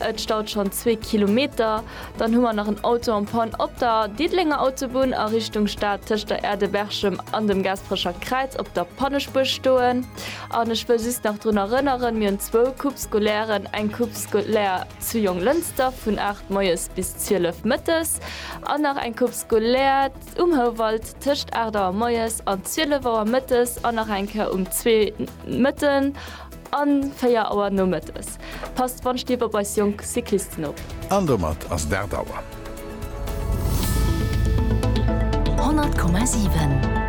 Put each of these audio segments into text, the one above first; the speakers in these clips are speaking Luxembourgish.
Et staut schonn zwee Kilometer. Dann hu mer nach en Auto en panne op der Diddelenger Autobunn a Richtung Stad tëscht der Aire de Berchem an dem Gaasperecher Kräiz op der Pannespuer stoen. An ech wëll just nach drun erënneren, mir hunn zwou Coupes scolaires, eng Coupe scolaire zu Jonglënster vun 8 moies bis 12 mëttes an nach eng Coupe scolaire um Houwald tëscht 8 Auer moies an 12 Auer mëttes an nach eng Kéier um zwee mëtten. An 4 Auer nomëttes. Passt d'Wandstief op eis jonk Cyclisten op. An domat ass et 8 Auer. 100,7.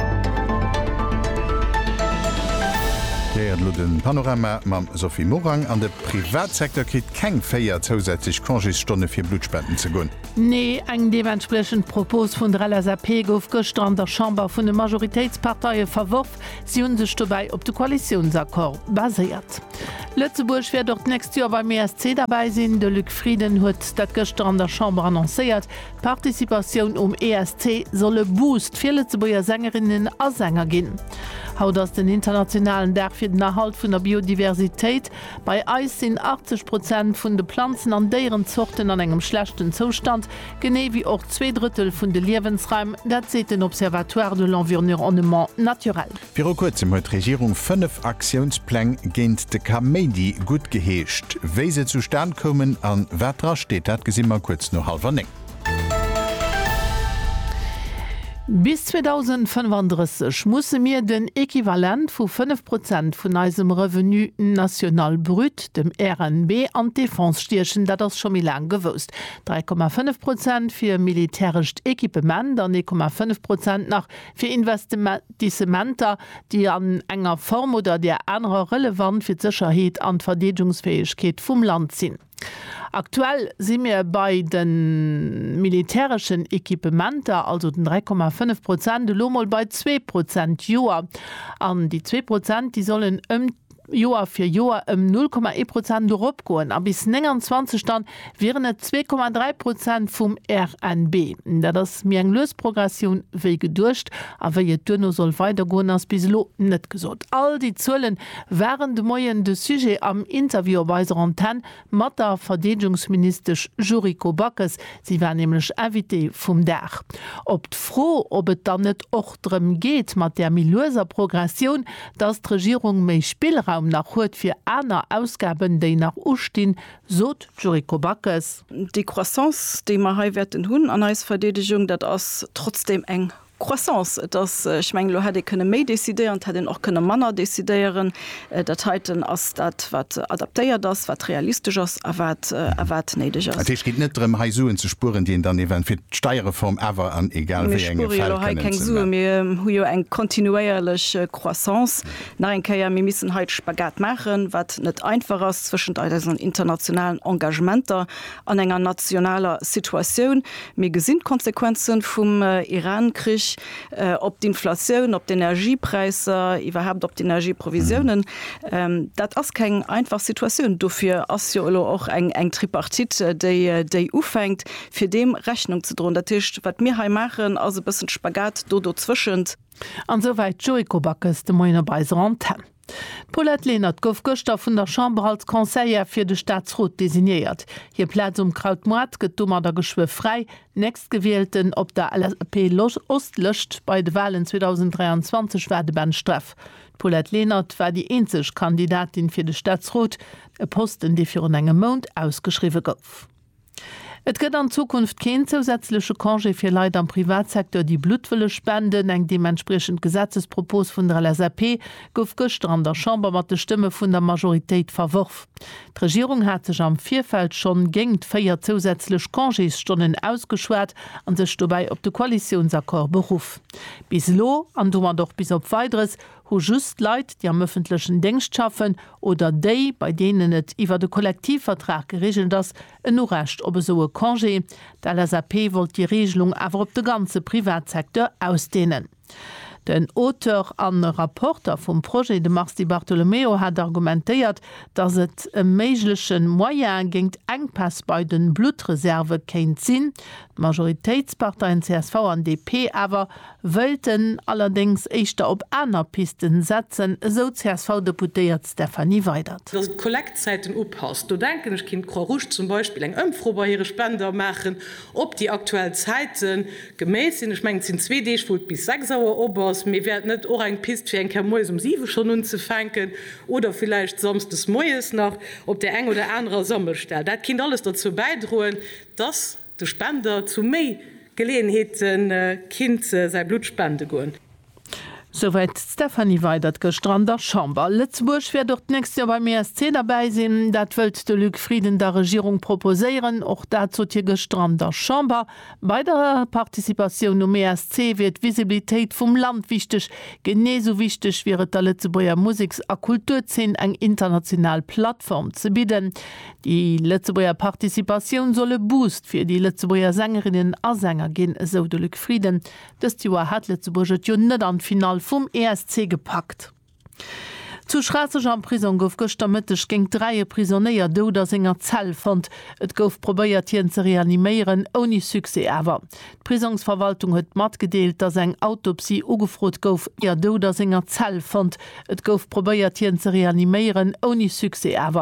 Dir héiert elo de Panorama mam Sophie Morang. An de Privatsecteur kritt keng 4 zousätzlech Congésstonne fir Bluttspenden ze goen. Nee, eng deementspriechend Propos vun der LSAP gouf gëschter an der Chamber vun de Majoritéitsparteie verworf. Si hunn sech dobäi op de Koalitiounsaccord baséiert. Lëtzebuerg wäert och d'nächst Joer beim ESC derbäi sinn. De Luc Frieden huet dat gëschter an der Chamber annoncéiert. D'Participatioun um ESC soll e Boost fir Lëtzebuerger Sängerinnen a Sänger ginn. Haut ass den internationalen Dag fir den Erhalt vun der Biodiversitéit. Bei eis sinn 80 Prozent vun de Planzen an Déierenzorten an engem schlechten Zoustand. genee wéi och zwee Drëttel vun de Liewensraim, dat seet den Observatoire de l'envirnrnement naturel. Viru kuerzem huet d'Regierung fënnef Aktiounspläng géint de Kaméidi guttgeheescht. Wéi se zustan koumen a wat dra steet, dat gesi mer kuerz no hallwer néng. Bis 2035 musse mir den Equivalent vu 5 Prozent vun eisem Revenu national brut, dem RNB, an d'Defense stiechen. Dat ass scho méi laang gewousst. 3,5 Prozent fir militärescht Equipement an 1,5 Prozent nach fir Investissementer, déi an enger Form oder där anerer relevant fir d'Sécherheet an d'Verdeedgungsfäegkeet vum Land sinn. Aktuell si mir bei de militäreschen Equipementer, also den 3,5 Prozent, elo mol bei zwee Prozent, Joer. An déi zwee Prozent, déi sollen ëm. Joer fir Joer ëm 0,1 Prozent eropgoen a bis 29 dann wieren et 2,3 Prozent vum RNB. Dat ass méi eng lues Progressioun wéi geduecht. A wéi et duerno soll weidergoen ass bis elo net gesot. All déi Zuelen waren de Moien de Sujet am Interview op eiser Antenn Mat der Verdeedegungsministesch Yuriko Backes, si war nämlech Invitée vum Dag. Op d'Fro, ob et dann net och drëm geet, mat där méi lueser Progressioun, datt d'Regierung méi Spillraum nach huet fir aner Ausgaben, déi nach ustinn, sot d'Yuriko Backes. Déi Croissance, déi mer hei wäerten hunn an eis Verdeedegung, dat ass trotzdeem eng Croissance. Et ass, ech mengen, elo hätt ee kënne méi decidéieren, et hätt een och kënne manner decidéieren. Dat heiten ass dat, wat adaptéiert ass, wat realistesch ass a wat, a wat néideg ass. Dat heescht, et geet net drëm, hei Suen ze spueren, déi een dann event. Fir d'Steierreform awer an egal wéi engem Fäll kënnen ze. Mir spuere jo hei keng Sue. Mir hu jo eng kontinuéierlech Croissance. Nach eng Kéier, mir missen hei de Spagat maachen, wat net einfach ass, zwëschent eisen internationalen Engagementer, an enger nationaler Situatioun. Mir gesinn d'Konsequenze vum Iran-Krich op d'Inflatioun, op d'Energiepräisser, iwwerhaapt op d'Energieprovisiounen. Dat ass keng einfach Situatioun. Dofir ass jo elo och eng Tripartite, déi ufänkt, fir deem Rechnung ze droen. Dat heescht, wat mir hei maachen, ass e bëssen de Spagat do dozwëschent. An esouwäit d'Yuriko Backes de Moien op eiser Antenn. D'Paulette Lenert gouf gëschter vun der Chamber als Conseillère fir de Staatsrot designéiert. Hir Plaz um Krautmoart gëtt domadder geschwë fräi. Nächstgewielten op der LSAP-Ost-Lëscht bei de Walen 2023 war de Ben Streff. D'Paulette Lenert war déi eenzeg Kandidatin fir de Staatsrot, e Posten, dee virun engem Mount ausgeschriwwe gouf. Et gëtt an Zukunft keen zousätzleche Congé fir Leit am Privatsecteur, déi Blutt wëlle spenden. Eng deementspriechend Gesetzespropos vun der LSAP gouf gëschter an der Chamber mat de Stëmme vun der Majoritéit verworf. D'Regierung hat sech am Virfeld schonn géingt véier zousätzlech Congésstonnen ausgeschwat a sech dobäi op de Koalitiounsaccord beruff. Bis elo, an domat och bis op Weideres, hu just Leit, déi am ëffentlechen Déngscht schaffen oder déi, bei deenen et iwwert e Kollektivvertrag gereegelt ass, en Urecht op esou e Congé. D'LSAP wollt déi Reegelung awer op de ganze Privatsecteur ausdeenen. Den Auteur a Rapporter vum Projet, de Mars Di Bartolomeo, hat argumentéiert, datt et e méiglech Moyen géint Enkpäss bei de Bluttreserve kéint sinn, D'Majoritéitsparteien csv an DP awer wëilten allerdéngs éischter op aner Pisten setzen, esou d'CSV-Deputéiert Stefanie Weydert. Datt et d'Kollektzäiten upasst, do denken ech, kéint d'Croix-Rouge zum Beispill eng Ëmfro bei hire Spender maachen, op déi aktuell Zäite geméit sinn. Ech mengen, et sinn zwee Deeg, wou et bis 6 Auer op ass, mee wär et net och eng Pist, fir eng Kéier moies um 7 schonn unzefänken oder villäicht samsdes moies nach op där eng oder anerer Sammelstell? Dat kéint alles derzou bäidroen, Dass de Spender zu méi Geleeënheete kinnt säi Blutt spende goen. Souwäit d'Stéphanie Weydert gëschter an der Chamber. Lëtzebuerg wäert och d'nächst Joer beim ESC derbäi sinn. Dat wëllt de Luc Frieden der Regierung proposéieren. Och dat sot hie gëschter an der Chamber. Bei der Participatioun um ESC wier d'Visibilitéit vum Land wichteg. Genee sou wichteg wier et der Lëtzebuerger Museks a Kulturzeen eng international Plattform ze bidden. Déi Lëtzebuerger Participatioun soll e Boost fir déi Lëtzebuerger Sängerinnen a Sänger ginn, esou de Luc Frieden. Dëst Joer hat Lëtzebuerg et jo net an d'Finall vum ESC gepackt. Zu Schraasseg am Prisong gouf gëschter Mëtteg géint dräi e Prisonéier dout a senger Zell fonnt. Et gouf probéiert, hien ze reaniméieren, ouni Succès awer. D'Prisongsverwaltung huet matgedeelt, datt eng Autopsie ugefrot gouf, ier dout a senger Zell fonnt. Et gouf probéiert, hien ze reaniméieren, ouni Succès awer.